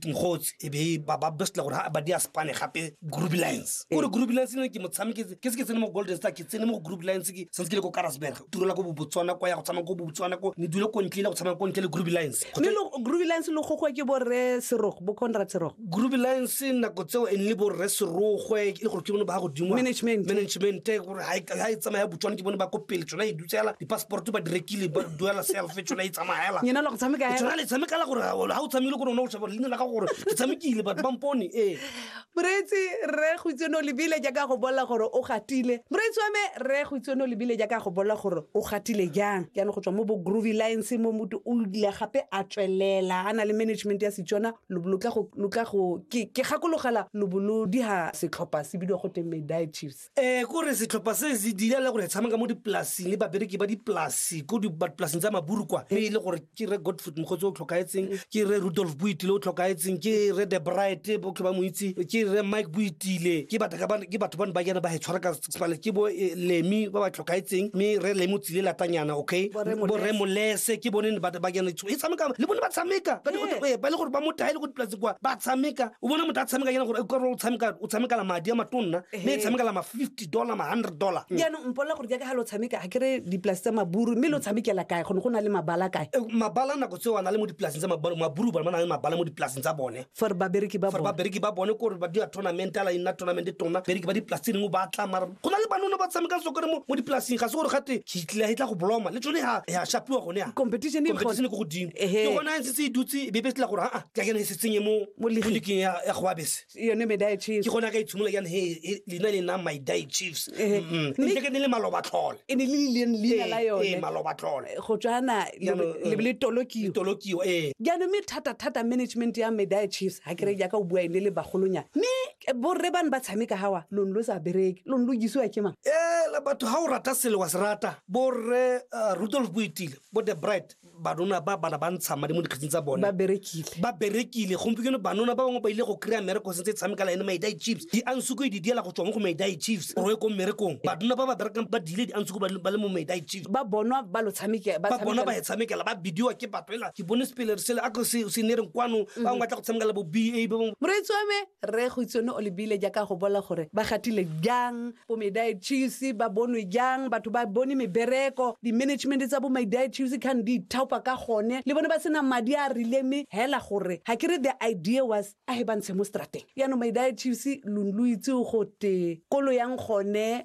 nkgotsi e be ba ba bestla gore ha ba dia spane gape group lines eh. gore group lines ne ke motshameki ke se ke tsene mo golden star ke tsene mo group lines ke sentse ke le ko karasberg turela ko bobotswana kwa ya go tsamaya ko bobotswana ko ne dule ko ntle le go tsamaya ko ntle le group lines mme group lines lo gogwe ke borre serogo bo conrad serogo group lines nako tseo e nne borre serogwe e le gore ke bone ba godimo management management gore ha e tsamaya botswana ke bone ba ko pele tsona e tsela di-passport ba di rekile ba duela self tsona e tsamaela nyena lo go tshameka hela tsona le tshamekela gore ha o tshamekile gore o ne o sheba leina la ga gore ke tshamekile batho ba mpone ee moreetsi rre go itse no lebile jaaka go bolela gore o gatile moreetsi wa me rre go itse no lebile jaaka go bolela gore o gatile jang jaanong go tswa mo bo groovy lines mo motho o ile gape a tswelela a na le management ya setswana lo lo tla go lo tla go ke ke gakologela lo bo lo diha setlhopha se bidiwa go teng medai chiefs um kore setlhopha se se dira le gore tshameka mo dipolasing le babereki ba dipolasi ko dipolasing tsa maburu kwa mme e le gore ke re godford mogotsi o tlhokaetseng ke re rudolf boitile o tlhokaetseng ke re the bright botlhe ba mo itse ke re mike boitile ke batho bane ba jana ba e tshwara ka sepale ke bo eh, lemi ba ba tlhokaetseng mme re lemi o tsile latanyana okay borre molese ke bone ba jana e tshameka le bone ba tshameka ba eh, le gore ba motaele go dipolasing kwa ba tshameka o bona motho a tshameka jana gore o tshamekala madi a matonna mme e tshamekela ma fifty dollar ma hundred dollar mm. jaanong mpolela gore jaaka ga lo tshameka ga kere dipolase tsa maburu mme lo tshamekela kae gone go na le mabala kae eh, mabala nako tseo a na le mo dipolaseng tsa maburu maburu ba na le mabala mo dipolaseng tsa bone for babereki ba bone babereki ba bone kore ba dira tournament ala ina tournament tona bereki ba dipolase dingwe ba tla mara go na le banone ba tshamekang sokore mo mo dipolaseng ga se gore gate kitlela e tla go bloma le tsone ha ya shapiwa gone ya competition e competition e go godimo ke gona e setse e dutse e be be tla gore ha a ke kene e se tsenye mo mo liking ya ya go abese yone medai chiefs ke gona ka itshimola yana he e- lena le nang my die chiefs Ehe. Mm, Mme- ntse ke ne le maloba tlhole e ne le lileng leina la Ee, ee, yone maloba tlhole go tswana Jaanong, eh, lebe le tolokiwa tolokiwa ee jaanong mme thata-thata management ya medai chiefs ga kere jaaka o bua ene le bagolonyana mme eh, borre bane ba tshameka gawa lone lo sa bereke lone lo jisiwa ke mang e le batho ga o rata selo wa se rata borre uh, rudolf boitile bo the bright banona ba bana ba ntsha madi mo dikgetsing tsa bone ba berekile ba berekile gompieno banona ba bangwe ba ile go kry-a mmereko sentse e tshameka la ene maidai chiefs di ansuko e di diela go tswa mo go maidai chiefs roe ko mmerekong banona ba ba berekang ba diile di ansuko ba le mo maidai chiefs ba bonwa ba lo tshamekela ba bona ba e tshamekela ba bidiwa ke batho ela ke bone sepele sele a se ne reng kwano ba bangwe ba tla go tshamekela bo ba bangwe moreetsi wa me Rre Goitsone o lebile jaaka go bola gore ba gatile jang bo Medae Chiefs, ba bonwe jang, batho ba bone mebereko, di-management tsa bo Medae Chiefs can di ithaopa ka gone, le bone ba sena madi a a rileng mme hela gore ga ke re the idea was a he ba ntshe mo strateng. Jaanong Medae Chiefs lo lo itse go te kolo yang gone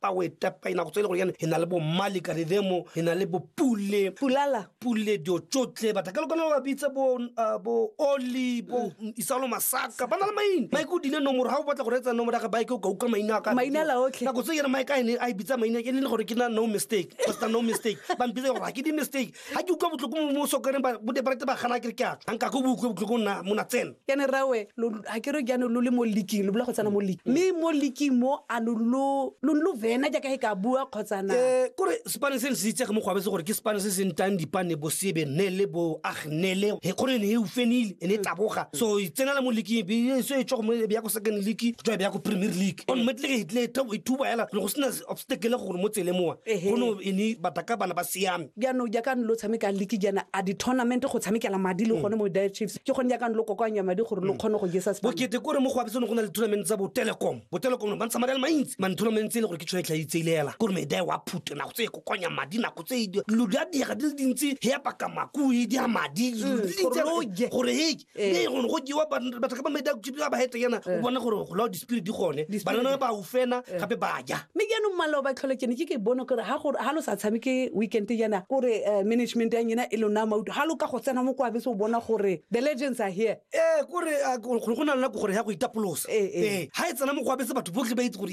pa o etapa inako tse e le gore e na le bommale karidemo e na le bopule pulala pule dio tsotlhe batla ka lokana ba bitsa bo uh, bo oli bo mm. isalo masaka ba na le maina maike o dile nomoro ga o batla go reetsa nomoro ya ga baike o ka uka maina ka maina la otlhe nako tse yena maike a ne a e bitsa maina e le gore ke na no mistake basta no mistake ba mpitsa gore ga ke di mistake ga ke utlwa botlhoko mo sokareng bodeparate ba gana kere ke a tswa nka ko boutlwe botlhoko nna mona tsena yane rawe ga ke re ke yane lo le mo leaking lo bula go tsena mo leaking mme mo leaking mo a lo lo vena jaaka e ka bua kgotsana um kore sepane se ne se itsege mo go abetse gore ke sepane se se ntang dipane bo sebe ne le bo agnele e kgore e ne e ufenile e ne e taboga so e tsenela mo leaking e so e tswa go mo e beya ko second league go tswa e beya ko premier league on metleke e tle e thuba fela go sena obstacle gore mo tsele mowa Ehe. go no ene bataka bana ba siame jaanong jaaka ne lo tshameka leke jaana a di-tournament go tshamekela madi le gone mo dire chiefs ke gone jaaka ne lo kokoanya madi gore lo kgone go jesa sepano. bokete kore mo go abetsone go na le tournament tsa botelecom botelecom no ba ntsha madi a le mantsi mane tournament tse e le gore ke tšhone tlhaitselela kore medae wa phute nako tse e kokonya madi nako tse e di- dilo di a diega di le dintsi he apaka makui di a madi dilo di le dintsi gore lo je. gore he Eh. mme gone go jewa ban- batho ka bamedi a kutsipi ba ba hete yana o bone gore go lao di-spirit di gone Di-spirit. banana ba ufena gape ba ja mme jaanong malao ba tlhole kene ke ke bone gore ga gore- ga lo sa tshameke weekend yana kore eh, management ya nyena e lona mauto ga lo ka go tsena mo kwa bese o bona gore the legends are here ee kore a- go go na le nako gore ya go itapolosa Ee, ee. ga e tsena mo go abetse batho botlhe ba itse gore